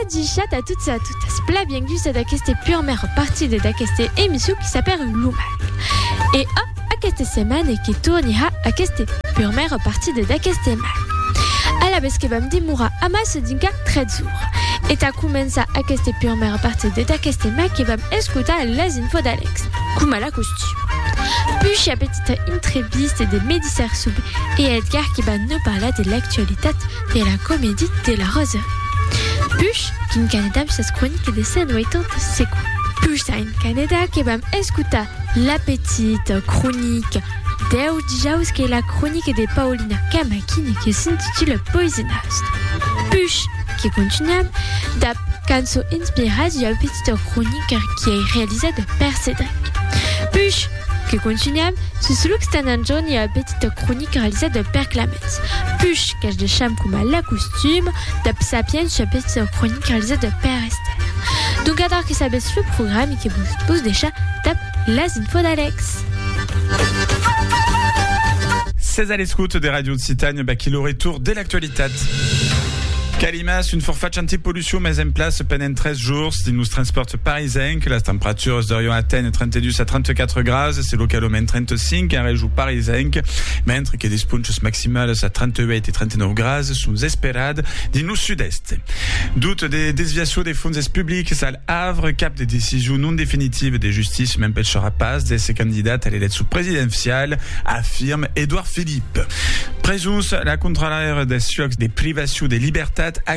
Adichat a tots e a totas, pla bienguts a d'aqueste purmèr partida d'aqueste emission qui s'apèl Lo Mal. E a aquesta setmana que tornirà aquesta purmèra partida d'aqueste mal. Alavetz que vam demorar amassa dinca 3 jours. E tà començar aquesta purmèra partida d'aqueste mal que vam escotar las infos d'Alex, coma la costum. Pucha petita entrevista de Medi Sarsoub e Edgar qui van nau parlar de l'actualitat de la comedie de la Rose. Push qu'in canedam sas croniques de Saint Waytant secu. Push a in caneda que vam escutar la petite cronique deu dijaus qu'ei la cronique de Paulina Camaquin e que s'intitule Poisinàs. Push que continuam dab cançon inspirada ua petita cronique qui ei realizada per Cédric. Push. Que contunham sus Lucs tan anjorn ua petita cronica realizada per Clamètz Puch qu'ac deisham coma l'acostum dab Sapiens ua petita cronica realizada per Esther. Donc adar que sabetz lo program e que vos pos deishar dab las infos d'Alex. Sètz a l'escota de Radio Occitània, vaquí lo retorn de l'actualitat. Calimas, un forfach antipolucion. Sum exempla, se penent 3 jours dins los transpòrts parisencs, las temperaturas deurion aténher 32 a 34 grases e localament 35 en region parisenc, mentre que des ponchas maximalas a 38 e 39 grases son esperad dins lo sud-èst. Doute de desviacion de fonses publics al Havre, cap de decision non definitiva de justícia m'empecharà pas d'èsser candidat a l'eleccion presidencial, afirme Edouard Philippe. Presons, la contraròra des siòcs de privacion de libertat,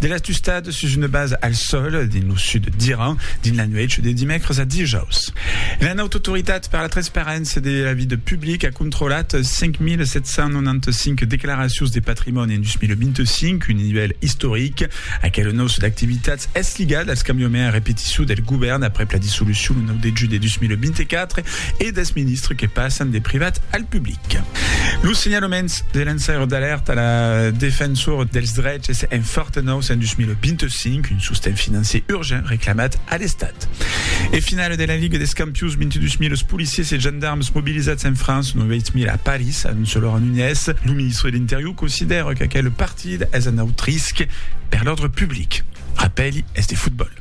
De l'astustat sus una basa al sòl dins lo sud d'Iran dins la nuèch de dimècres a dijaus. La Haute Autoritat per la Transparéncia de la Vida Publica a controlat 5.795 declaracions de patrimòni en 2025, un nivèl istoric. Aquel nòç d'activitats es ligat als cambiaments a repetiçu del govèrn aprèp la dissolucion lo 9 de julh de 2024. e dels ministres que passan de privat al public. Los senhalaments de lançaire d'alèrta a la Defensora dels Dreches en Fortenòus en 2025, un sosten financier urgent reclamat a l'Estat. E finala de la Liga dels Campions, 22.000 policiers e gendarmes mobilizats en França, 9.000 a París, anonça Laurent Nunez. Lo ministre de l'Interior considèra qu'aquel partida es un aut risc per l'òrdre public. Rapèli es de fotbòl.